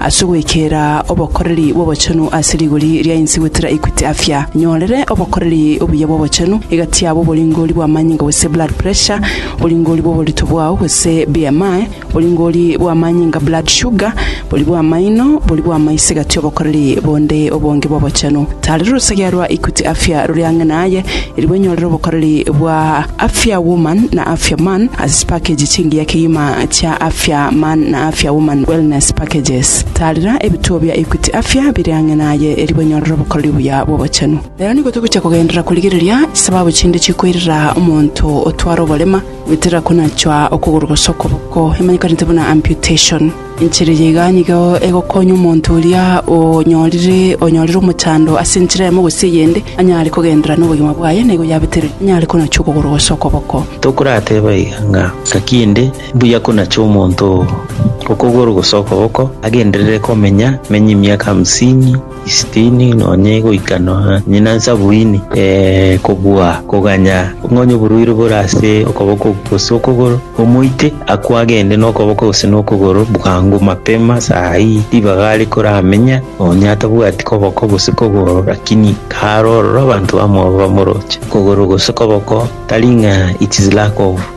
Ase ogwekera obokoreri bw'obochenu ase rigori ria inse gwetera Equity Afya, nyorere obokoreri obuya bw'obochenu, egati yabo, oboringori bw'amanyinga gose blood pressure, oboringori bw'oborito bwao gose BMI, oboringori bw'amanyinga blood sugar, bori bw'amaino, bori bw'amaiso egati obokoreri bonde obonge bw'obochenu. Tarera orusagia rwa Equity Afya rore ang'e naye, erigwe nyorere obokoreri bwa. Afia Woman na Afia Man as package chingiya kegima chia Afia Man na Afia Woman Wellness Packages. Taarera ebituo bia Equity Afia bire ang'e naye erio banyorere obokoreri obuya bw'obochenu. Rero nigo togochia kogenderera korigereria chisababu chinde chikoirera omonto otware oborema, goetera konachwa okogoro gose okoboko, emanyekanete buna amputation. Enchera eye iga nigo egokonya omonto oria onyorire onyorire omochando ase enchera eyemo gose eyende, anyare kogenderera nobogima bwaye na igo yabeterwe, anyare konachwa okogoro gose okoboko. Tokorateba iga ng'a ngaki ende mbuya konacha omonto oo okogoro gose okoboko agenderere komenya, amenye emiaka hamsini, Isitini nonye goika nonye na nsabini, ee, kobua koganya ng'onye oboruiri bore ase okoboko gose okogoro, omoite akwo agende nokoboko gose nokogoro bwango mapema saa ii ribaga are koramenya, nonye atabwati koboko gose kogoro rakini kare ororo abanto bamwabo bamoroche kogoro gose koboko tari ng'a it is lack of.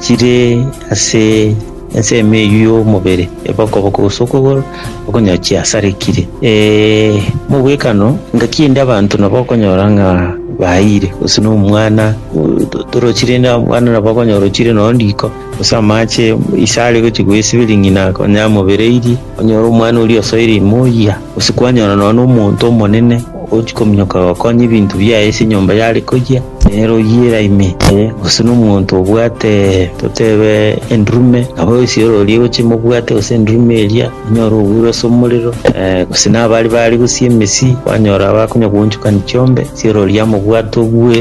chire ase ensemo eyio y'omobere, ebokoboko gose okogoro, okonyora chiasarekire. Ee, mobwekano, engaki ende abanto nabo okonyora ng'a baeire, gose na omwana o- to- torochi rende abana nabo okonyora orochire noo riko, gose amache ise are gochi goesibiri ng'ina konya amobereirie, onyore omwana oria osoire ime oyia, gose kwanyora nonye na omonto omonene. Ogochia kominyoka gokonya ebinto biaye ase enyomba y'are koyia, nere oyiera ime, ee, gose nomonto obwate, totebe, endurume, nabo esiorori egochia emobwate, gose endurume eria, onyore obuuru ase omorero, ee, gose nabare bare gosia emesii, kwanyora abe akonya gwanchokani chiombe, esiorori yamobwate obue,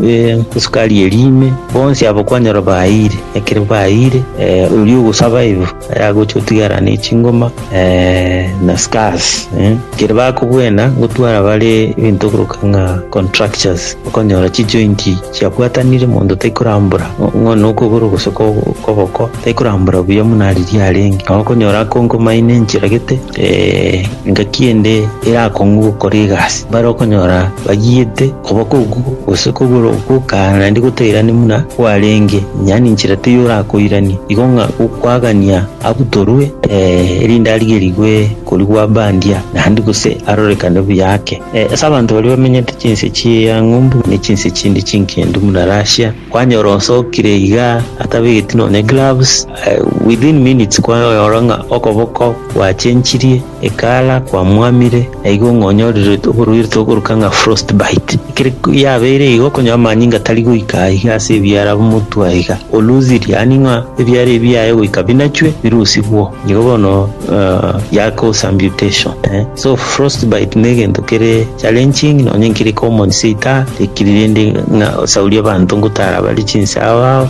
ee, esukari eria ime, bonsi abo kwanyora bayiire, ekero bayiire, ee, oria ogosaba ibo. Aye agocha otigara ne chingoma eh, na scars eh. Kere bakobwena gotwara bare ebinto okoroka ng'a contractures okonyora chijointi chiabwatanire monto taikorambora ng'o nokogoro gose ko- koboko taikorambora buya muna ariria arenge nao okonyora akonkomaine enchiragete eh, engaki ende erakong'u gokora egasi bare okonyora bagiete Koboko okwo, gose kogoro okwo kare naende gotairani buna kwarenge, onye aninchire teiyo orakoirania. Igo ng'a gokwagania abutorwe, ee, erinde arigerigwe korigwa bandia, naende gose arorekane buya ake. Ee, ase abanto baria bamenyete chinse chia ng'umbu ne chinse chinde chinkendu buna Russia, kwanyora osokire iga atabegeti nonya gloves, ee, within minutes kwayora ng'a okoboko gwachenchirie. Ekara kwamwamire, na igo ng'onyorirwe oborwaire togoruka ng'a frost bite. Ekero yabeire igo, okonyora amanyinga atari goika aiga ase ebiara b'omotwe aiga, oluthiri, yaani ng'a ebiara ebi biaye goika binachwe, birusigwo. Nigo bono eh, yakosa amputation. Eh, so frost bite ne egento kere challenging, nonye nkere common seita, tekiri rende ng'a osaurie abanto ngotara bare chinse ao ao,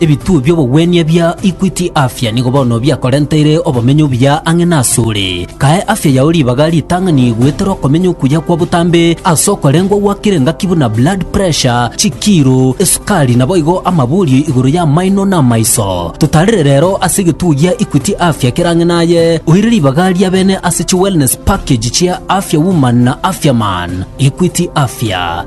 Ebituo bi'obogwenia bia Equity Afya nigo bono biakorenteire obomenyo obuya ang'e nasore. Kae afya yao ribaga ritang'ani goetera okomenya okuya kwa botambe ase okorengwa gwakire engaki buna blood pressure, chikiiro, esukari naboigo amaborio igoro y'amaino na amaiso. Totarire rero ase egetuo gia Equity Afya kere ang'e naye, oire ribaga ria bene ase chi wellness package chia Afya Woman na Afya Man. Equity Afya.